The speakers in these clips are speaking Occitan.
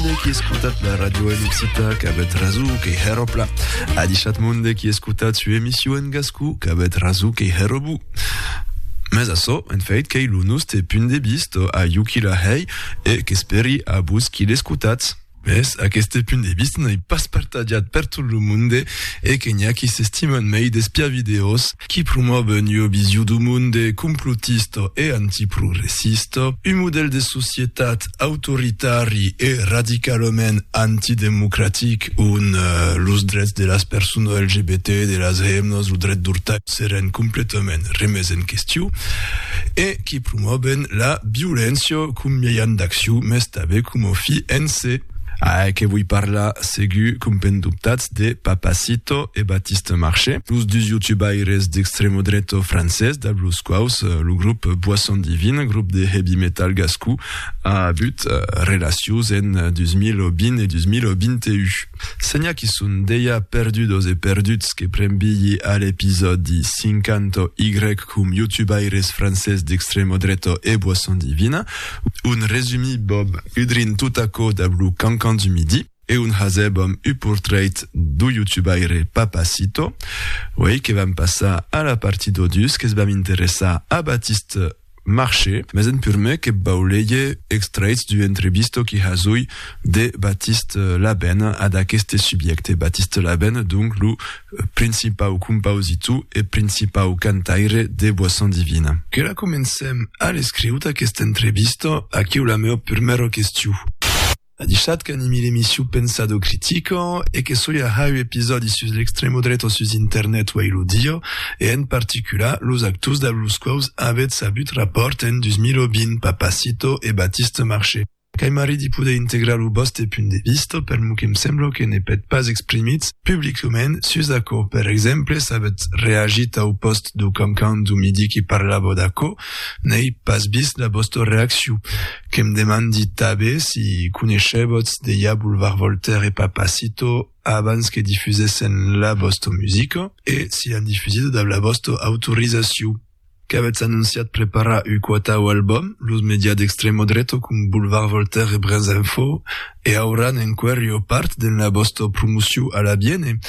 Monde qui escutat la radio en occità qu'avèt raso que hèro pla. A dichat monde qui escutat su emissió en gascú qu'avèt raso que hèro bu. Mes açò, en fait, qu'ei lo noste punt de vist a iu qui la hei e qu'esperi a vos qui l'escutatz. Mes aqueste punt de vist n'ei pas partajat per tot lo monde e que n'i a qui s'estiman mei d'espiar videos qui promòve un ua vision du monde complotista e antiprogressista, un modèl de societat autoritari e radicalament antidemocratic ont los drets de las personas LGBT, de las hemnas, lo dret d'urtar seràn completament remés en question e qui promòven la violéncia com mièjan d'accion, mès tanben coma fi en se. A que voi parlar segur, compendubtatz. de Papacito e Baptiste Marché, los dus youtubaires d'extremo dreto francés dab los quaus lo grop Boisson Divine, grop de heavy metal gascon, a avut relacions en 2020 e 2021. Senha qu'i son dejà perdudos e perduts que pren bilhi a l'episòdi 50 Y com youtubaires francés d'extremo dreto e Boisson Divine, un resumí bob udrint tot aquò dab lo Cancan du Midi. e un hasèb amb u portrèit d'u youtubaire Papacito, uei que vam passar a la parti d'odius que's vam interessar a Baptiste Marché, mes en purmè que vau leger extrèits d'u entrevisto qui hasui de Baptiste Laben ad aqueste subiècte, Baptiste Laben donc lo principau compausitou e principau cantaire de Boisson Divine. Que la comencem a l'escriut aquesta entrevisto, aquiu la meu purmèra questiu. A dichat qu'animi l'emission Pensado Critico e que soi a hau episòdi sus l'extremo dreto sus internet uèi lo dieu e en particular los actors dab los quaus avètz avut rapòrt en 2020, Papacito e Batiste Marché. Qu'ai marrit de poder integrar lo vòste punt de vista per lo que'm sembla que ne pèt pas exprimitz publicament sus aquò. Per exemple, s'avètz reagit au pòst dau Cancan dau Midi que parlava d'aquò, n'ai pas vist la vòsta reaccion. Que'm demandi tabé si coneichèbotz dejà Boulevard Voltaire e Papacito abans que difusèssen la vòsto musica e si l'an difusido dab la vòsto autorizaciu. Qu'avètz anonciat preparar uu quatau albòm, los medias d'extremo dreto com Boulevard Voltaire e Brènzinfo e auràn enquèrio part den la vòsto promociu a l'abiene.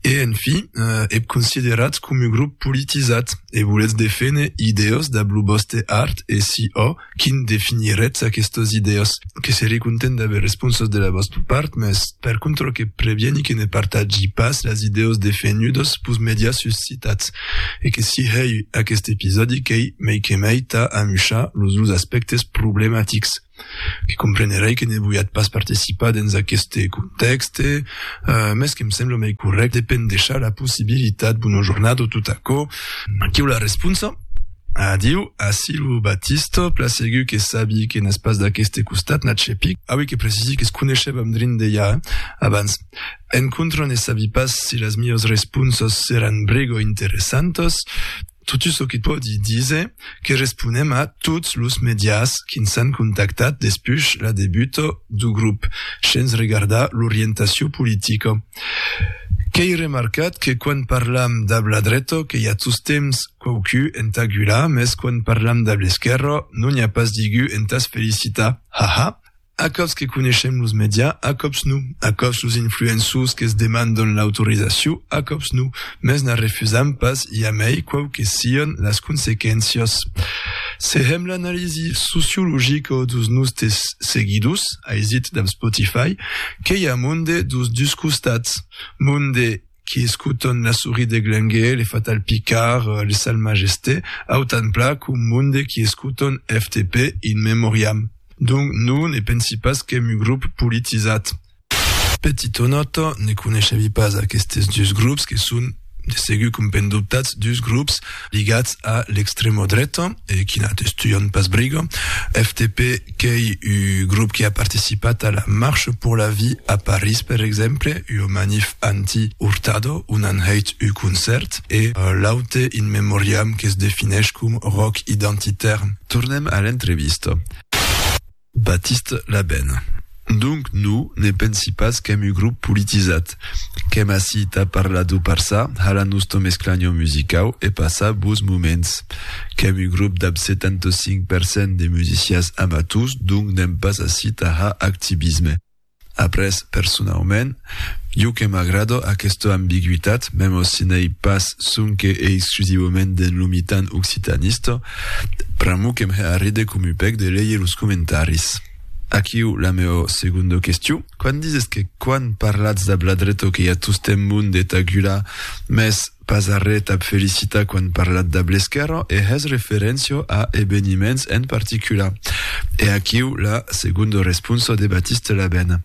E en fi, ep consideratz com uu grup politizat e voletz defene idèos dab lo vòste art e si ò, Quin definiretz aquestos idèos? Que seré content d'aver responsas de la vòsta part, mès per contra que previeni que ne partatgi pas las idèos defenhudos pus mèdias sus citats, e que si hèu aquest episòdi qu'ei mei que mei tà amushar los dus aspèctes problematics. Que comprenerèi que ne voiatz pas participar dens aqueste contèxte, mès que'm sembla mei corrècte de pendechar la possibilitat, bona jornada o tot aquò, aquiu la responsa. Adiu, ací lo Batista, plan segur que sabi que n'es pas d'aqueste costat, n'a chepic, auie que precisi que es coneishèvam drin d'Elha, eh? Abans, en contra ne sabi pas si las mios responsos seràn brego interessantas, totu çò que pòdi díser que responem a tots los medias qui'ns an contactat despuch la debuta du grup, shens regardar l'orientacion politica. Qu'ei remarcat que quan parlam dab la dreta que i a tostemps, Quauqu entà gular, mès quan parlam dab l'esquèrra, non i a pas digu entàs felicitar. Ha ha! A còps que coneishem los media, a còps non. A còps los influençus que's demandan l'autorizaciu, a còps non. Mès n'a refusam pas jamei quau que sian las consequéncias. Se hèm l'analisi sociologica dos nòstes seguidors, aisit dab Spotify, qué i a monde dos dus costats. Monde. qui escotan la souris de Glengué, le fatal Picard, le sal Majesté, autant pla qu'au monde qui escotan FTP, In Memoriam. Donc non ne pensi pas qu'èm un grop politisat. Petita nòta, ne coneishavi pas aquestes dus grops que son, de segur qu'un pèn dobtats, dus grops. ligats a l'extrèma dreta e qui n'atestuan pas briga. FTP qu'ei u grop qui a participat a la Marche pour la vie a París per exemple, ua manif anti-Hurtado on an hèit u concèrt e l'aute In Memoriam que's defineish com rock identitaire. Tornem a l'entrevista. Baptiste Labène, Donc no ne pensi pas qu'èm un grop politizat. Qu'èm ací tà parlar d'o parçar, halar nòsto mesclanhon musicau e passar bos moments. Qu'èm un grop dab 75 per cent de musicians amators, donc n'èm pas ací tà har activisme. Après, personaument, jo que m'agrado aquesta ambigüitat, memo si n'ei pas sonque e exclusivaument dens lo mitan occitanista, pr'amor que m'he arride com u pèc de leir los comentaris. Aquiu la meo segonda question. Quand dises que quan parlatz dab la dreta que i a tostemp mon de tagular, mès Pas arré t'ab felicitar quan parlat dab l'esquèrra e hès referéncia a ebeniments en particular. E aquiu la segonda responsa de Batiste Labèn.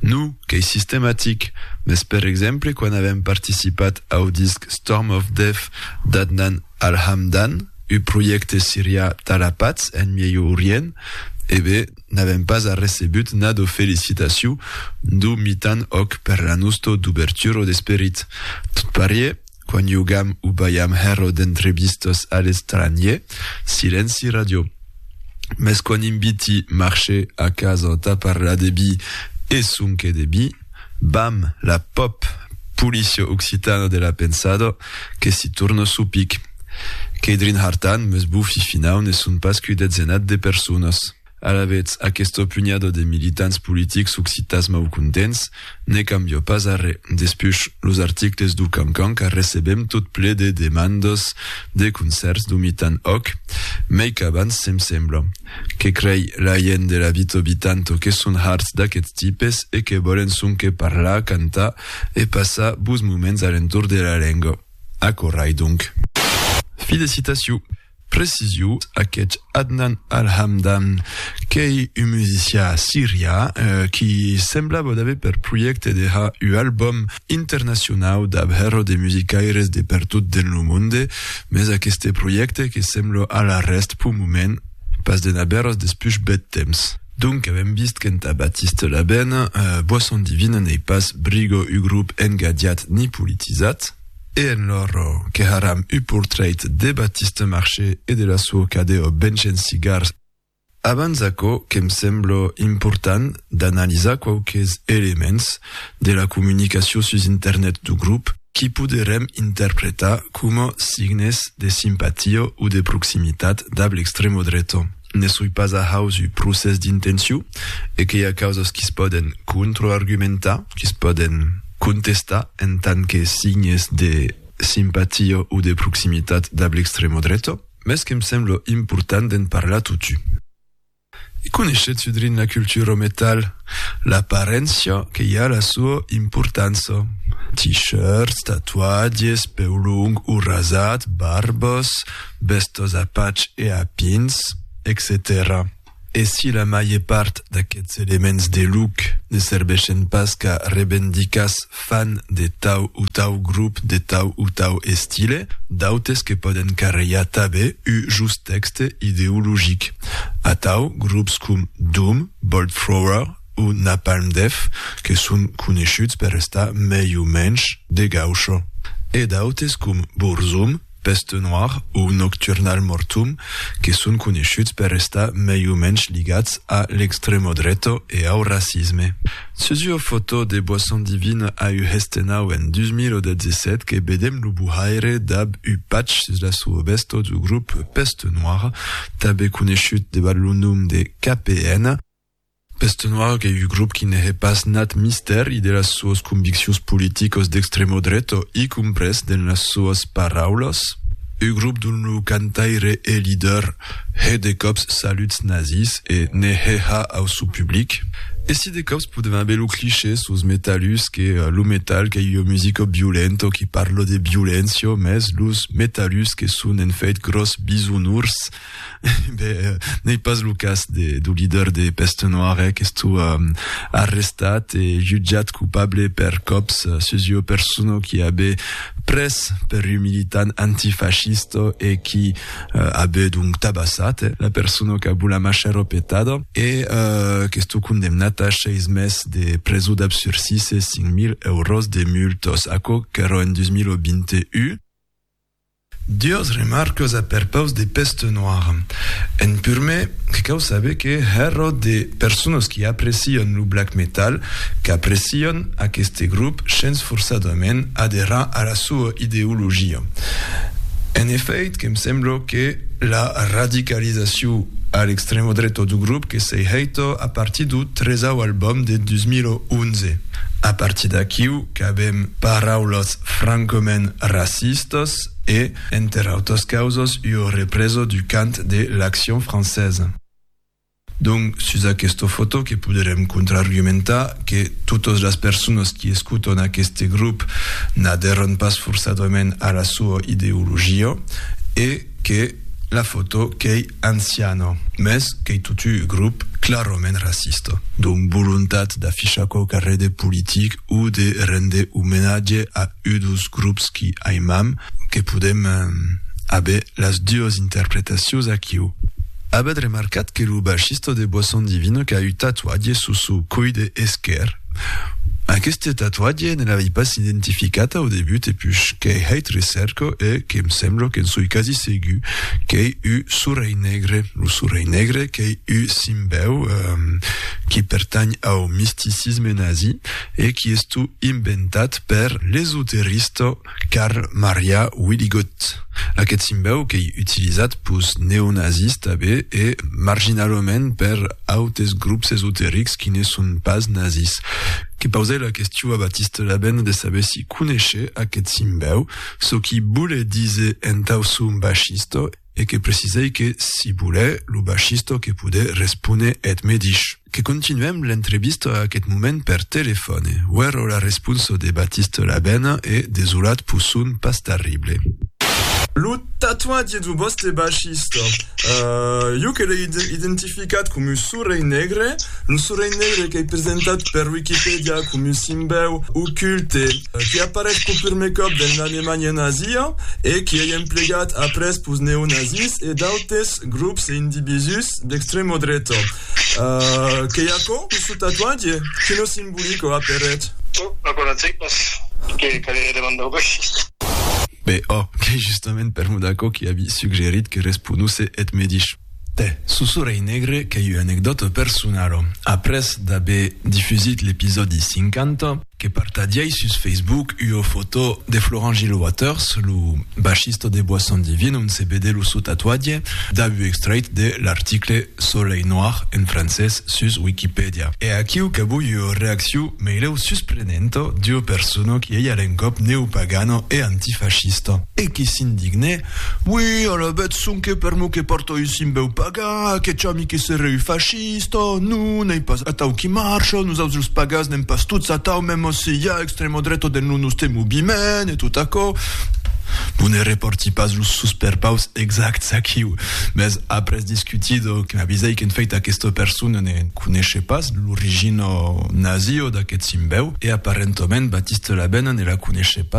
No, qu'ei sistematic, mès per exemple quan avèm participat au disc Storm of Death d'Adnan Al-Hamdan, ua projècte sirià tà la patz en Mièu Orient, e be, N'avèm pas arrecebut nadò felicitaciu d'o mitan òc per la nustò duberturò d'esperit. Tot parier, quan iogam o balham hèrò d'entrebistas a l'estranhier, silenci radiò. Mès quan inviti marchè a casa tà parlar de bi e sonque de bi, Bam! la pop! Policio occitano de la pensado que si torno su pic. Qu'ei drinhartan, mes bofi finau ne son pas qu'ui detzenat de personas. Alavetz, aquesto punhado de militants politics occitans maucontents ne cambio pas arre. Despuch, los articles du Cancan qu'arrecebem tot ple de demandas de concèrts d'omitan òc, mei qu'abans, se'm sembla. Que crei la gent de la vita obitanto que son harts d'aqueths tipes e que vòlen sonque parlar, cantar e passar bos moments a l'entorn de la lenga. Aquò rai donc. Fi de citacion. Precision, aqueth Adnan Al-Hamdan qu'ei un musician sirian qui semblava d'aver per projècte de har ua album. internacionau dab hèrro de musicaires de pertot den lo monde, mès aqueste projècte que sembla a la rèst p'un moment pas de n'abèros despuch bèth temps. Donc avèm vist qu'entà Baptiste Labène, boisson divina n'ei pas brigo u grop engadiat ni politizat, e en lor queharam u portrèit de Baptiste Marché e de la suo cadeo benchens cigars, Abans aquò que'm sembla important d'analizar quauques elements de la comunicacion sus internet du grop qu'i poderem interpretar coma signes de simpatia o de proximitat dab l'extrema dreta. Ne soi pas ajaus uu procès d'intencion e qu'i a causas qui's pòden contraargumentar, qui's pòden contestar en tant que signes de simpatia o de proximitat dab l'extrema dreta. Mès que'm sembla important d'en parlar totu. I coneishetz udrin la cultura au metal, l'aparéncia que i a la sua importança, t-shirts, tatuatges, peu long o rasat, barbas, bèstas a patch e a pins, etcetèra. E si la maie part d'aqueths elements de luc ne serveshen pas qu'a revendica's fan de tau o tau grup de tau o tau estile, d'autes que pòden carrejar tabe u just texte ideologic. Atau, grups com Doom, Bolt Thrower o Napalm Death, que son coneishuts per estar mei o mensh de gaucho. E d'autes com Burzum, Peste noir o Nocturnal Mortum, que son coneishuts per estar mei o mensh ligats a l'extremo dreto e au racisme. Sus ua fotò de Boisson Divine a u Hestenau en 2017 que vedem lo buhaire dab u patch sus la sua vestò du grop Peste Noir, tanbe coneishut debat lo nom de KPN, Pestenoir qu'ei un grop qui ne hè pas nat mistèri de las soas conviccions politicos d'extremo dreto, i comprés dens las soas paraulas, un grop dont lo cantaire e lider hè de còps saluts nazis e ne hè ha au sou public. E si de còps podem aver lo cliché sos metallus que lo metal qu'ei ua musica violento qui parla de violéncia, mès los metallus que son en fèit gròs bisonors, Ben, n'ei pas lo cas de, do lider de Peste Noire qu'estó arrestat e jutjat copable per còps sus ua persona qui abe pres per un militant antifascista e qui abe donc tabassat la persona qu'a bu la macher opetada e qu'estó condemnat a seis mes de preso dab sursis e 5.000 euros de multas. Aquò qu'èra en 2021. Duas remarcas a perpaus de Peste Noire. En purmèr, que cau saber que hèra de personas qui aprecian lo black metal qu'aprecian aqueste grop shens forçadament aderar a la soa ideologia. En efèit, que me sembla que la radicalizacion a l'extrema dreta du grop que s'ei hèita a partir du tresau album de 2011. A partir d'aquiu qu'avèm paraulas francament racistas e, enter autras causas, ua represa du cant de l'Action française. Donc, sus aquesta fotò que poderem contraargumentar que totas las personas qui escotan aqueste grop n'adèrran pas forçadament a la soa ideologia e, que la foto qu'ei anciana, mès qu'ei totu un grop clarament racista. Dont volontat d'afichar quauque rede politic o de rende omenatge a un dos grops qui aimam, que podem aver las duas interpretacions aquiu. Avètz remarcat que lo baixista de Boisson Divine qu'a un tatuatge sus sou coide esquèr? Aqueste tatuatge ne l'avei pas identificat au debut e pus qu'ei hèit recèrca e que'm sembla que'n soi quasi segur qu'ei u sorelh negre, lo sorelh negre qu'ei u simbèu qui pertanh au misticisme nazi e qui estu inventat per l'esoterista Carl Maria Willigot, aqueth simbèu qu'ei utilizat pus neonazis tabé e marginalament per autes grops esoterics qui ne son pas nazis, que pausè la questiu a Batiste Labène de saber si coneishè aqueth simbèu, çò qui bolè díser entau son bachisto e que precisèi que si bolè lo bachisto que podè respóner eth medish. Que continuem l'entrevista a aquest moment per telefòne. Uèro la responsa de Baptiste Labène e desolat pus son pas tarrible. Lo tatuatge de lo vòstre baixista, jo que l'ai identificat coma Sorelh Negre, lo Sorelh Negre qu'ei presentat per Wikipedia coma un simbèu oculte que apareis pel prumèr còp dens l'Alemanha nazia e qu'ei emplegat après pels neonazis e d'autes grops e individús d'extremodreta. Uh, qu'ei aquò, questo tatuatge? Que no simbolico a per ret. Toh, aquò non sei pas. Que caleré de mandar-o coishi. Be, oh, qu'ei justament per mot d'aquò qu'i avi suggerit que responusse eth me dich. Tè, Susurei Negre qu'ei ua anecdòta personala. Après d'aver difusit l'episòdi 50, que partagièi sus Facebook ua fotò de Florent Gilles Waters, lo bachista de Bois Sans Divine, ont se vede lo sò tatuatge, dab ua extrèit de l'article Soleil noir, en francés, sus Wikipedia. E aquiu qu'avui ua reacciu meilèu susprenenta d'ua persona qui ei a l'encòp neopagana e antifascista, e qui s'indigne, Ui, alavetz sonque per mo que pòrto un simbèu pagan, aqueth chami que serè un fascista! Isto non ei pas atau qui marcha, nosaus los pagas n'èm pas tots atau, mèma si i a extremo dreto dens lo noste moviment e tot aquò. Non ne reparti pas los susperpaus exacts aquiu, mès après discutido que m'avisèi qu'en fèit aquesta persona ne coneishè pas l'origina nazio d'aqueth simbèu e aparentament Batiste Labène ne la coneishè pas.